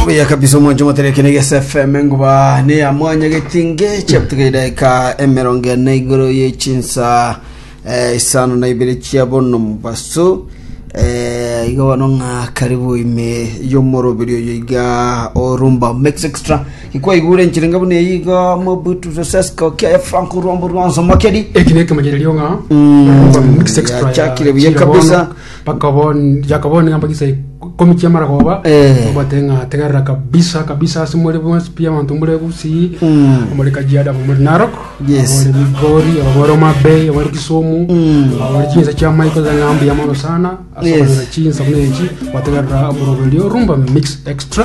Buya kabisa omwancho moterekene gese FM nguba ne ya mwanya getinge chaptuka idaika emerongo ene igoro ye chinsa eh, isano na ibere chia bono mubaso eh, iga bono ng'a karibu ime yomoroberi oyo iga orumba mix extra ikwaigure nchiringa buna eyi iga mobutu sosesco kia franco rombo rwanso makeri eki nekemo kiri rionga Mm, mix extra ya- yachakire buya chira bono. kabisa Bakabon- yakaboonia chiambo chise ikomi chi'amaragoba Eh. obatebia ng'a tegerera kabisa kabisa ase more bonsi pi abanto mbure gusii Mm. omore kajiado aba more narok Yes. abore migori aba more omabei abore kisumu Mm. abore chinsa chia maiko za ng'ambu ya mono sana Yes. asabonera chinsa buna echi bategerera omoroberio rumba mix extra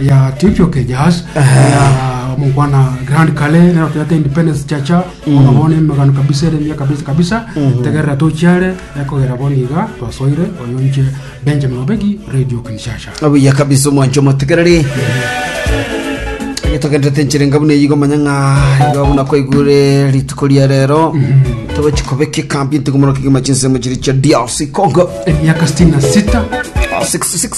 ya Chief Okejas ya mukwana Grand Kale nero tuyate Independence Chacha ona bona emegano kabisa ere mia kabisa kabisa tegerera tochiare ekogera boniga twasoire oyo nche Benjamin Obegi Radio Kinshasha obuya kabisa omwancho motegereri getogendete nchirenga buna eyigo manya ng'a iga buna kwaigure rituko ria rero togochi kobeka ekambi ntigomoroka kigima chinsemo chiri chia drc congo emyaka 66 66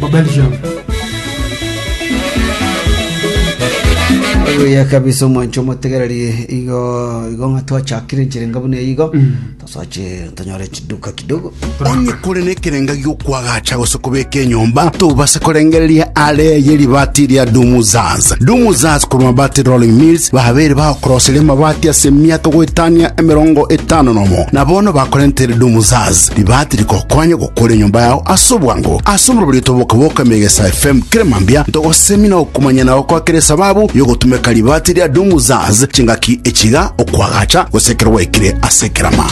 bwa Belgium. obuya kabisa omwancho omotegereri igo igo ng'a twachakire nchirenga buna igo tosache tonyore chiduka kidogo onye kore nekerenga giokwagacha gose kobeka enyomba tobase korengereria are ye ribati ria dumuzaz dumuzaz korwa mabati rolling mills babere bagokoroseria amabati ase emiaka goetania emerongo etano nomo na bono bakorentere dumuzaz ribati rikokonya kore enyomba yao ase obwango ase omorobori otoboka boka Megesa FM kera mambia ntogosemina okomanya na gokoa kera esababu yogotumeka ribati ria Dumuzaz chingaki echiga okwagacha gose ekero gwaikire ase ekerama